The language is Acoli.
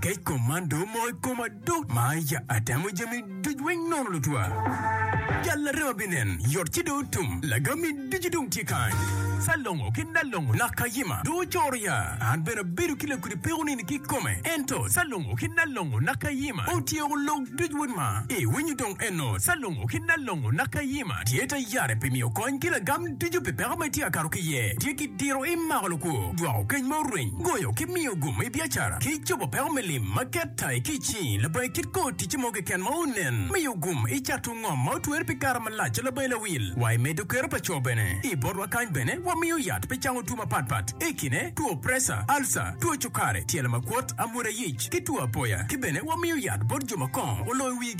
Kec kom man do omoko i koma do ma ya atemo jami duc weng nono lutwa. Jal larema binen, yot ci do otum, lagami ducu dong tye kany. Salongo ki Nalongo nak kayima do ocoro ya. An bene abedo ki lakudi peko nini ki kome. Ento Salongo ki Nalongo nak kayima otyeko lok duc weng ma iwinyo dong eno Salongo ki Nalongo nak kayima tye ta yare pi miyo kony ki lagam Tico pi peko ma itye ka kato ki iye tye ki diro i mako lukwo, jwako keny ma oreny, goyo ki miyo gumo i biacara, ki cobo peko me lim ma ket ta i kic-ci. Labangi kit kor ticce mo keken ma onen, miyo gum i cato ngom ma otwer pi kare malac a labangi lawil. Wa i medo kero pa co bene. I botwa kany bene wamiyo yat pi cango two mapat pat i kine, two preca, alca, two cukare, tyelo makwot, amwoda yic, ki two apoya. Ki bene wamiyo yat bot jo ma kongo oloyo wigi.